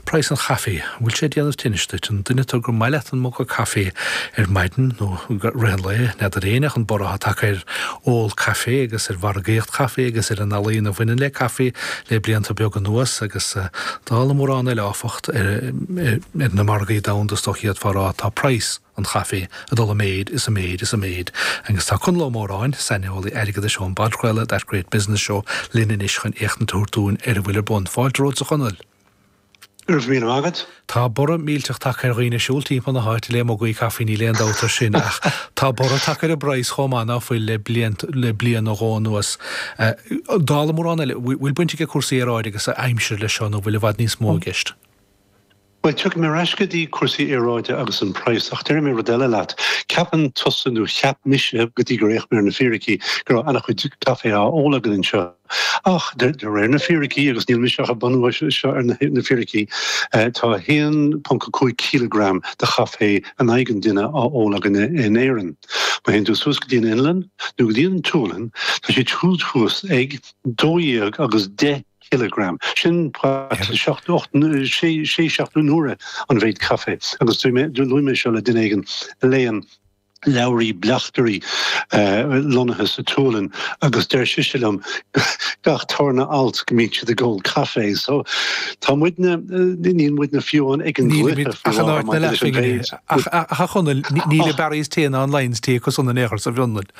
Praghas an chaife, bhfuil sé ag déanamh tinnis duit? An duine tú gur maith leat an muga caife ar maidin nó i rith an lae? N'fheadar éinne ach an borradh atá tagtha ar ól caife agus ar mhargaíocht chaife agus ar an ealaíon a bhaineann le caife le blianta beaga anuas agus dála mórán eile áfach ar na margaí domhanda is dócha fhéadfá a rá tá praghas an chaife ag dul i méid is i méid is i méid agus tá Conall Ó Móráin, saineolaí airgeadais ón bpodchraoladh That Great Business Show linn anois chun éachtaint a thabhairt dúinn ar a bhfuil ar bun. Fáilte romhat a Chonaill! Go raibh míle maith agat. Tá borradh millteach tagtha ar dhaoine ag siúl timpeall na háite le mugaí caife, níl aon dabht faoi sin, ach tá borradh tagtha ar an bpraghas chomh maith ná fuil le bliain nó dhó anuas. Dála mórán eile, bhfuil baint ag cúrsaí aeráide agus aimsire leis seo nó bhfuil i bhfad níos mó i gceist? Bhuel, tiocfaidh mé ar ais go dtí cúrsaí aeráide agus an praghas, ach déarfaidh mé rud eile leat. Ceapann tusa, nó cheap mise, go dtí gur fhéach mé ar na fíricí, go raibh an-chuid caifé á ól againn anseo. Ach de réir na fíricí, agus níl mise ach ag bunú seo ar na fíricí, tá 1.5 cíleagram de chaifé in aghaidh an duine á ól againne in Éirinn. Má théann tú suas go dtí an Fhionlainn nó go dtí an tSualainn, tá siad siúd thuas ag dó dhéag agus deich cíleagram. Sin seacht, ocht, sé, seacht n-uaire an mhéid caifé. Agus luaigh mé seo le duine éigin a léann. leabhraí bleachtaire lonnaithe sa tSualainn agus deir sise liom gach tarna alt go mbíonn siad ag ól caife so tá muidne níl muidne fiú amháin ag an gcluiche ach an áit na leathphoill ach a Chonaill níl an Barry's Tea ná an Lyons Tea acu san in Iarthar sa bhFionlainn.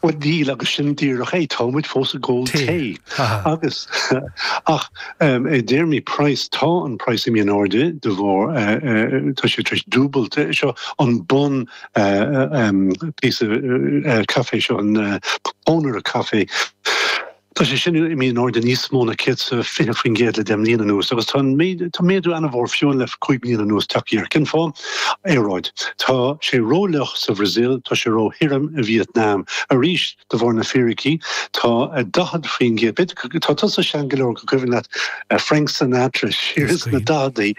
Bhuel níl agus sin díreach é, tá muid fós ag ól tae agus ach i dtéarmaí praghas tá an praghas imithe in airde de bharr tá sé tar éis dúbailt seo an bunphíosa caife seo an pónaire caife. Tá sé sin imithe in airde níos mó na 120% le deich mbliana anuas agus tá méadú an-mhór fiú le cúig bliana anuas tagtha air. Cén fáth? Aeráid. Tá sé rófhliuch sa Bhrasaíl, tá sé róthirim i Vítneam. Arís, de bharr na fíricí, tá 40%. Tá tusa sean go leor go gcuimhin leat Frank Sinatra siar sna daicheadaí.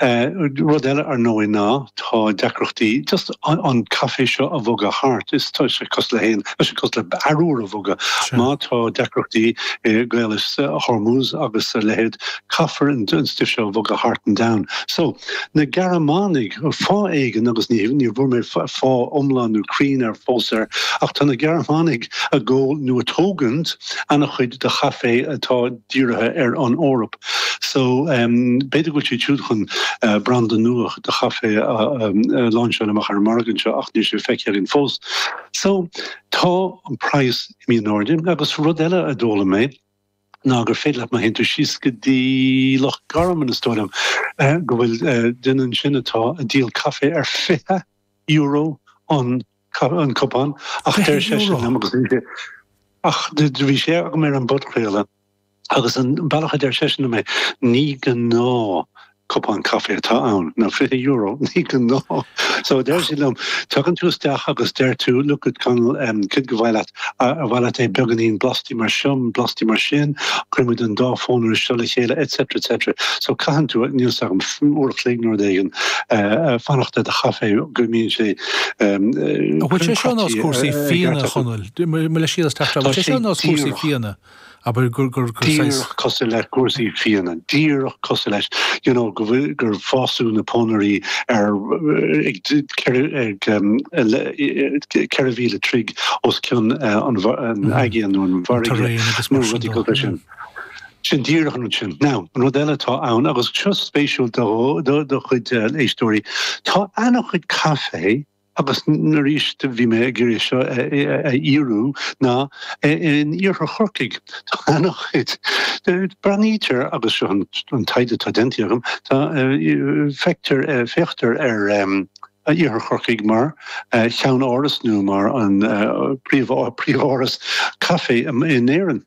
Rud eile ar ndóigh ná tá deacrachtaí just an caifé seo a bhogadh thart is tá sé cosúil le haon, tá sé cosúil le harbhar a bhogadh. Má tá deacrachtaí i gCaolas Hormuz agus a leithéid caithfear an stuif seo a bhogadh thart an domhan. So, na Gearmánaigh, fáth éigin agus ní bhfuair mé fáth iomlán nó cruinn fós air, ach tá na Gearmánaigh ag ól nó ag tógaint an-chuid de chaifé atá dírithe ar an Eoraip. So b'fhéidir go bhfuil siad siúd chun branda nua de chaifé a láinseáil amach ar an margadh seo ach níl sé feicthe againn fós. So tá an praghas imithe in airde agus rud eile a d'fhoghlaim mé ná gur féidir leat má théann tú síos go dtí Loch Garman is dóigh liom go bhfuil duine ansin atá ag díol caifé ar fiche euro an cupán ach deir seisean liom agus ach bhí sé agam ar an bpodchraoladh Agus an bealach a deir seisean liom é, ní gnáth cupán caife atá ann, nó €20, ní gnáth! So deir sé liom, tagann tú isteach agus deir tú, look at Conall, cad ba mhaith leat, ar mhaith leat é beagáinín blasta mar seo, blasta mar sin, cuirimid an dá phónaire seo le chéile etc etc. So caitheann tú, níl 's agam, uair a chloig nó rud éigin, fanacht ar do chaife go mbíonn sé Bhfuil sé seo nós cúrsaí fíona, Chonaill? Mo leithscéal as teacht ar, bhfuil sé seo nós cúrsaí fíona? Abair gur, gur, gur saghas. Díreach cosúil le cúrsaí fíona. Díreach cosúil leis, you know, go bhfuil, gur fásadh na pónairí ar, ag, ceithre, ag, um, le, ceithre mhíle troigh os cionn uh, an, bha- an Mhm. aigéan nó an bhfarraige. Terrain agus Nó mar sin rudaí cosúil leis sin. Sin díreach an rud sin. Now, an rud eile atá ann, agus seo spéisiúil do, do, do chuid uh, éistóirí, tá ana chuid caifé agus arís bhí mé ag iarraidh seo a fhíorú, ná in Iarthar Chorcaigh tá ana chuid. Breathnaítear agus seo an taighde atá déanta agam, feictear, féachtar ar Iarthar Chorcaigh mar cheann-áras nó mar an príomháras caife in Éirinn.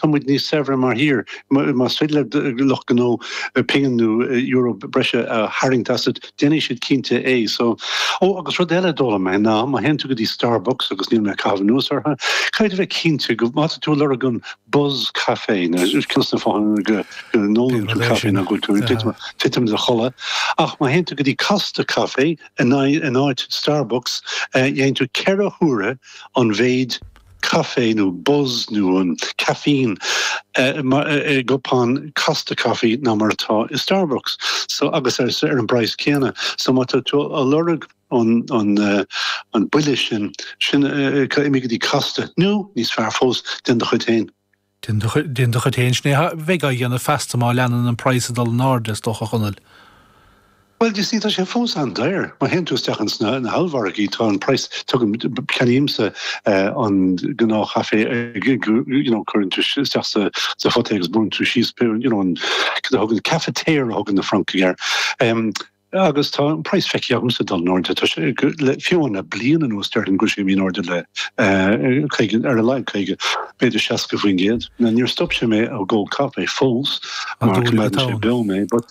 Tá muid níos saibhre mar thír. Más féidir le lucht gnó pingin nó euro breise a tharraingt asat, déanfaidh siad cinnte é. So. Ó, agus rud eile a d'fhoghlaim mé ná, má théann tú go dtí Starbucks, agus níl mé ag caitheamh anuas orthu, caithfidh tú bheith cinnte go, má tá tú ag lorg an buzz caife, nó ceann des na fáthanna go n-ólann tú caife ná go bhfuil tú ag titim i do chodladh, ach má théann tú go dtí Costa Café in áit Starbucks, gheibheann tú ceithre huaire an mhéid caife nó buzz nó caffeine i gcupán Costa caife ná mar atá i Starbucks so agus ar an bpraghas céanna. So má tá tú ag lorg an buille sin, sin imigh go dtí Costa nó, níos fearr fós, déan do chuid féin. Déan do chuid féin, sin é a bheidh á dhéanamh feasta má leanann an praghas ag dul in airde, is dócha, a Chonaill. Bhuel, you see, tá sé fós an-daor. Má théann tú isteach ins na hollmhargaí, tá an praghas, tugaim, ceannaímse an gnáthchaifé, you know, cuireann tú isteach sa phota é agus brúnn tú síos, you know, an, cad a thugann, cafetiere a thugann na Francaigh air. Agus tá an praghas feicthe agam ag dul in airde, tá sé le fiche bliain anuas, déarfainn go raibh sé imithe in airde le 50, ar a laghad 50, b'fhéidir 60% Now níor stop sé mé ó cheannach caifé fós, mar go mbeadh sé beo mé, but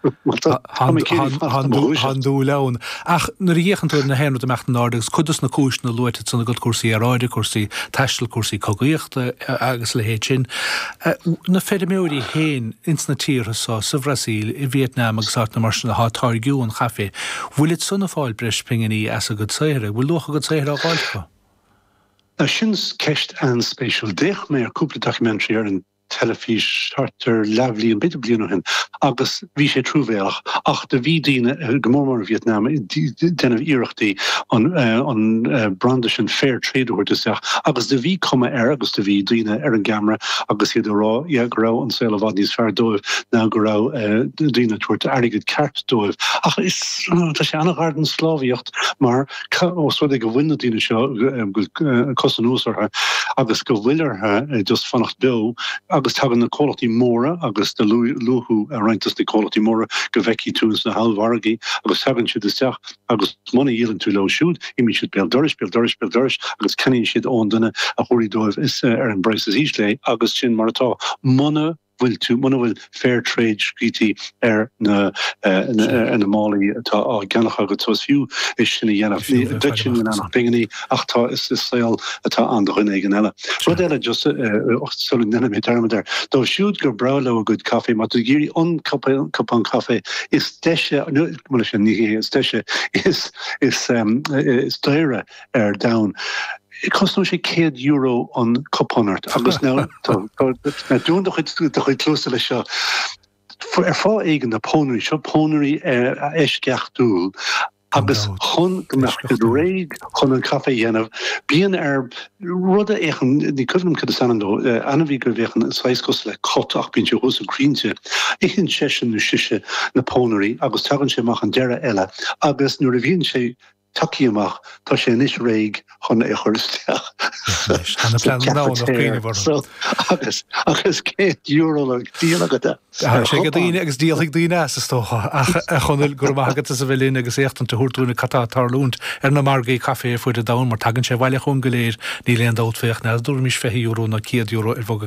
tá mé céillí fada dom a dhúiseacht. Tá an dúil ann. Ach nuair a chíonn tú na rudaí ag imeacht in airde agus cuid dos na cúiseanna luaite ansan agat, cúrsaí aeráide, cúrsaí taistil, cúrsaí cogaíochta agus a leithéid sin, a Na feirmeoirí féin ins na tíortha so, sa Bhrasaíl, i Vietnam agus áiteanna mar sin athá ag táirgiú an chaifé. Bhfuil iadsan ag fáil breis pinginí as a gcuid saothair? Bhfuil luach a gcuid saothair á fháil acu? a Sin ceist an-spéisiúil. D'fhéach mé ar cúpla documentary ar an teilifís thart ar leathbhliain, b'fhéidir bliain ó shin, agus Bhí sé truamhéalach ach do bhí daoine go mór mór i Vietnam ag déanamh iarrachtaí an an branda sin fair trade a thabhairt isteach agus do bhí cuma air agus do bhí daoine ar an gceamara agus iad ag rá yeah go raibh an saol i bhfad níos fearr dóibh go raibh daoine ag tabhairt airgead ceart dóibh ach is tá sé an-ghar don sclábhaíocht mar os rud é go bhfuil na daoine seo go bhfuil cos anuas orthu agus go bhfuil orthu just fanacht beo agus tagann na comhlachtaí móra agus do luaigh tú roinnt des na comhlachtaí móra go bhfeicfidh tú ins na hollmhargaí agus tagann siad isteach agus muna dhíolann tú leo siúd imíonn siad béal dorais, béal dorais, béal dorais agus ceannaíonn siad ón duine a thabharfaidh dóibh ar an bpraghas is ísle é agus sin mar atá. Muna. bhfuil tú muna bhfuil fair trade scríte ar na ar na málaí atá á gceannach agat so is fiú é sin a dhéanamh. Níl duitse ann ach pinginí ach tá is is saol atá ann do dhuine éigin eile. Rud eile just sula ndéanfaidh mé dearmad air dóibh siúd gur breá leo a gcuid caife má tá tú ag iarraidh an cup cupán caife is deise nó bhuel is é ní hé is deise is is is daoire ar domhan. Cosnóidh sé €100 an cupán ort agus ná dún do chuid cluasa leis seo. Ar fháth éigin na pónairí seo, pónairí eisceachtúil agus chun go mbeadh siad réidh chun an caife a dhéanamh, bíonn ar rud a fhéachann, ní cuimhin liom cad is ainm dó, ainmhí go bhféachann saghas cosúil le cat ach bíonn sé thuas sna crainnte, itheann seisean nó sise na pónairí agus tagann sé amach an deireadh eile agus nuair a bhíonn sé tagtha amach, tá sé anois réidh chun é a chur isteach sa chafetière. Agus €100 le díol agat é. Thagair sé go daoine agus díolfaidh daoine as, is dócha. Ach, a Chonaill, go raibh maith agat as a bheith linn agus éachtaint a thabhairt dúinne cad tá ag tarlúint ar na margaí caife ar fuaid an domhain, mar tagann sé abhaile chugainn go léir, níl aon dabht fé, ach ní thabharfaimis €20 nó €100 ar bhog a.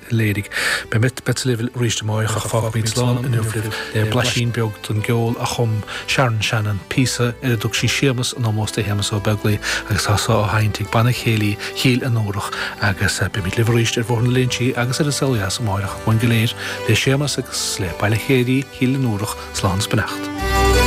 léirigh. Beimid beirt libh arís amárach ach fágfaimid slán inniu libh le blaisín beag den gceol a chum Sharon Shannon, píosa ar a dtug sí 'Séamas' in ómós do Shéamas Ó Beaglaoi agus tá sé á sheinnt ag Banna Céilí Chill Fhionnúrach agus beimid libh arís ar Bhóthar na Léinsí agus ar an Saol Ó Dheas amárach. Uainn go léir, le Séamas agus le Banna Céilí Chill Fhionnúrach, slán is beannacht.